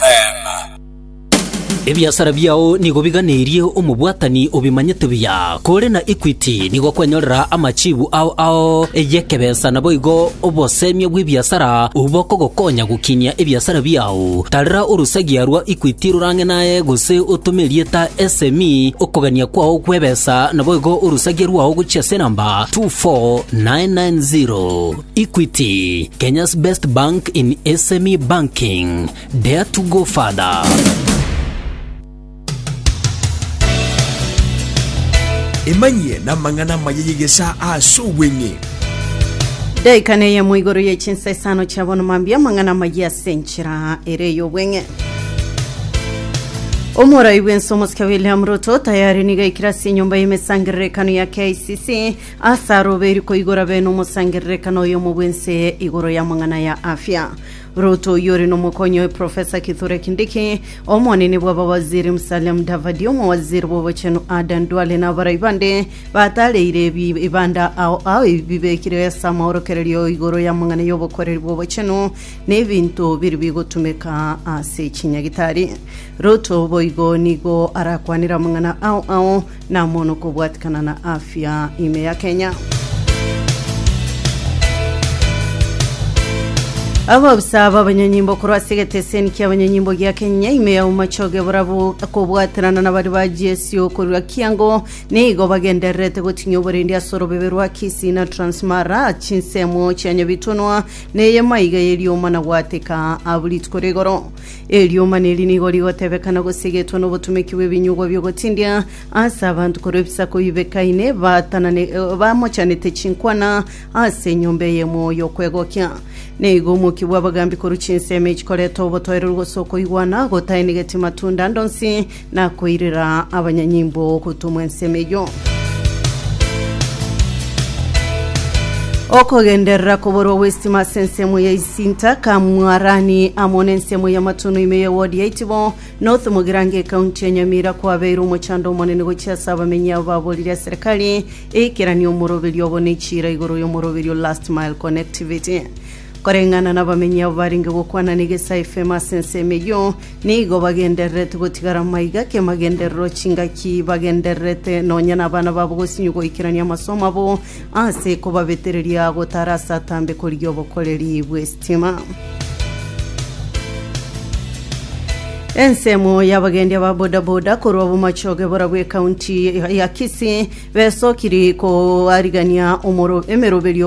Eema. Ebiasara biao nigo biganeirie omobwatani obimanyete buya. Kore na Equity nigo kwanyorera amachibu ao ao y'ekebesa naboigo obosemia bw'ebiasara obwo bokogokonya gokinia ebiasara biao. Tarera orosagia rwa Equity rorang'e naye gose otome erieta SME okogania kwao kw'ebesa naboigo orosagia rwao gochia ase enamba 24990. Equity, Kenya's best bank in SME banking. Dare to go further. emanyie namang'ana amaya yegesa ase obweng'e daika neye moigoro ye chinsa isano chia bono mambia amang'ana amaya ase enchera ere y'obweng'e omorai bw'ense omosike william ruto tayari niga aikire ase enyomba y'emesangererekano ya kicc Ase arobeiri koigora bene omosangererekano oyomo bw'ense eye igoro y'amang'ana ya afya. Ruto oyio ore nomokonyi oye Professor Kithure Kindiki, omonene bw'abawaziri Musalia Mudavadi, omowaziri bw'obochenu Adan Duale na abarai bande batareire ebi ibanda ao ao ebibekirwe ase amaorokererio igoro y'amang'ana y'obokwereri bw'obochenu na ebinto biri bigotumeka ase chinyagitari. Ruto boigo nigo arakwanere amang'ana ao ao Namono kobwatikana na afya ime ya Kenya. Abaofisa b'abanyonyimbo korwa ase egeteseni ki'abanyonyimbo gia Kenya ime ya Umachoge borabu kobwaterana na bari ba GSU korwa Kiango nigo bagendererete gotinyia oborendi ase orobebe rwa Kisii na Transmara chinsemo chia Nyabitunwa neye maiga ye riomana gwateka abu rituko rigoro Eriomana eri nigo rigotebekana gosegetwa nobotumeki bw'ebinyugwa bi'ogotindia ase abanto korwa ebisaku bibekaine baatanane bamochanete chinkwana ase enyomba eye emwoyo y'okwegokia. Neigo omokia bw'abagambi korwa chinsemo echi koreta obotoereru gose okoigwana gotaenegeti matunda ande onsi Nakoirera abanyanyimbo gotumwa ensemo eyio. Okogenderera koborwa gw'estima ase ensemo ya isinta, Kamwarani amo n'ensemo y'amatono ime y'ewodi ya Itibo, North Mugirango ekaunti ya Nyamira kwabeire omochando omonene gochia ase abamenyi abo baborire ase serikali eikeranie omoroberio obo ne echiira igoro y'omoroberio Last Mile Connectivity. Koreng'ana nabamenyi abo barenge gokwana negesaa efemo ase ensemo eyio, nigo bagendererete gotigara maiga ki'amagenderero, chingaki bagendererete nonya nabana babo gosinywa goikerania amasomo abo ase kobabetereria gotara ase atambe korigia obokoreri bw'estima. Ensemo y'abagendi aba bodaboda korwa Bomachoge bora bw'ekaunti ya Kisii besokiri koarigania omoro- emeroberio